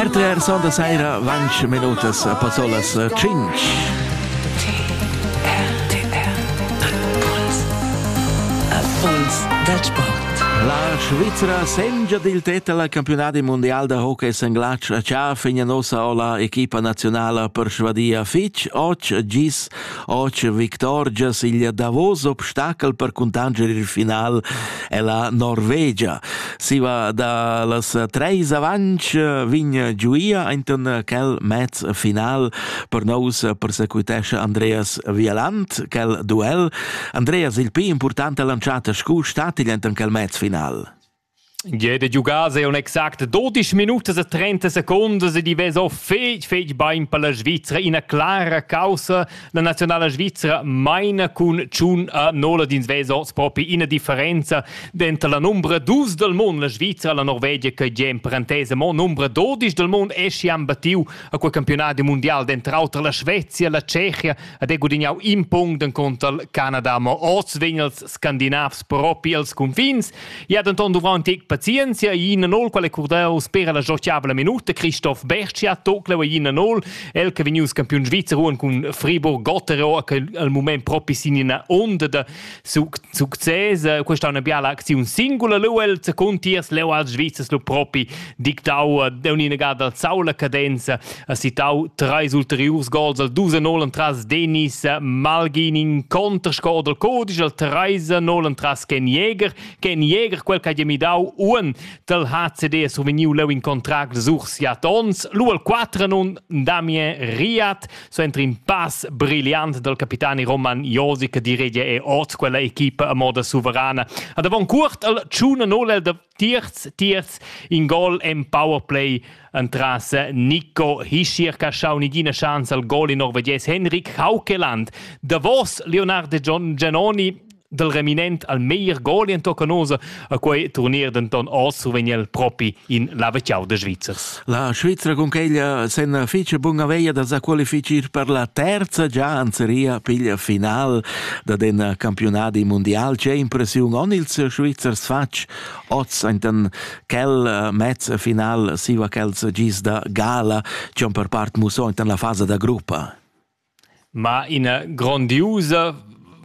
RTR Sonda saira 20 minutas a Pazzolas 5. Impuls dal sport. La Svizzera sengia dil tetta al campionadi mondial da hockey senglatsch a Cha fegna nossa ola equipa nazionala persuadia fitg och gis Oce victorgia siglia davos obstacel per cuntanger il final e la Norvegia. Siva da las treis avanc vign giuia ainten quel mez final per nous persecutesce Andreas Vialant, quel duel. Andreas il pi importante lanciata scu statigl enten quel mez final. Gie de giugar se un exact 12 minutas e 30 secondas e di veso fetg fetg bein per la Svizzera ina clara causa la nazionala svizzera meina cun tschun a nola dins veso propi ina differenza denter la numbra dus del mond la Svizzera la Norvegia che gie in parentese mo numbra 12 del mond esci han battiu a quel campionat mondial dentro auter la Svezia la Tschechia ed è gudignau in punct en conto al Canada ma oz vegn els scandinavs propi als confins I ha denton duvrau in tec pazienzia. Ina nol qual è curdau spera la giochiabla minuta. Christoph Bercia tocleu ina nol. El che vegnius campiun svizzer cun Friburg Gotterau che al mument propi sin ina onda da success. Questa è una biala aczione singula. Leu el secund tiers leu als Svizzers lu propi dictau da un'inegada dal Saula cadenza ha citau treis ulteriurs gols al 2 0 tras Denis Malgini in contrscore dal codice al 3 0 tras Ken Jäger Ken Jäger quel che ha midau un dal HCD ha survegniu leu in contract sur siat ons lu al 4 nun Damien Riad so entri in pass brilliant dal capitani Roman Josic che diregia e oz quella equipa a moda suverana ad avon curt al 1 0 da Tierz, tierz in gol en powerplay entras Nico Hischier che ha schau nigina chance al gol in norvegies Henrik Haukeland. Davos Leonardo Giannoni dal reminent al meglier gol en Tocanosa a quei turnier denton oz survegn el propi in laveciau de Svizzers. La Svizra cuncheglia sen fich buna veia da sa qualifichir per la terza già in seria piglia final da den campiunadi mundial. C'è impressiun on ils Svizzers fatg oz enten quel mezz final siva quels gis da gala, c'è per part muso enten la fase da gruppa. ma ina grondiusa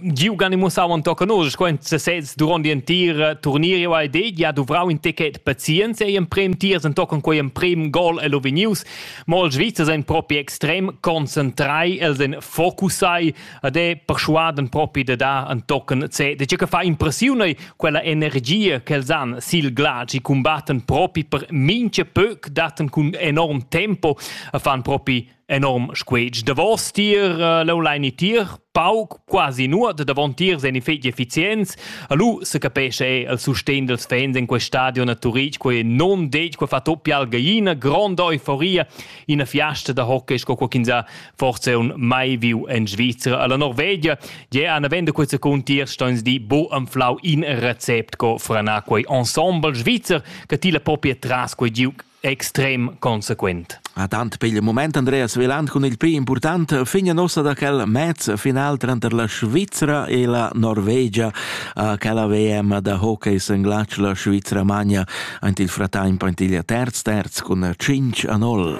giugan in mussau tochen oz sco in sesez duront l'entira turnier ei det ja duvrau in ticket pazienza ei emprem tiers entochen quei emprem gol el vegnius mo ils Svizzers ein propi extrem concentrai els ein focusai ad è persuaden propi de dar entochen C de che fa impressiun ei quella energia che els han sil glatsch i combatten propi per minche pöc datten cun enorm tempo e fan propi enorm squetsch davos tier uh, l'online e tier pauc quasi nuot davon tier sen effect effizienz alu se capesce è il sustegn dels fans in quel stadion a Turitg quei non detg quei fa toppia al gallina gronda euforia in fiasta da hockey sco qualchinza forse un mai viu in Svizzera alla Norvegia je an vende quei secund tier stoins di bo am flau in recept co frana quei ensemble Svizzer che ti la propria tras quei giug extrem consequent. A tant per il moment Andreas Veland cun il più importante figna nossa da quel match final tranter la Svizzera e la Norvegia a quella VM da hockey senglatsch la Svizzera magna ant il fratemp ant il terz terz cun 5 a 0.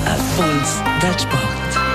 Erfolg da Sport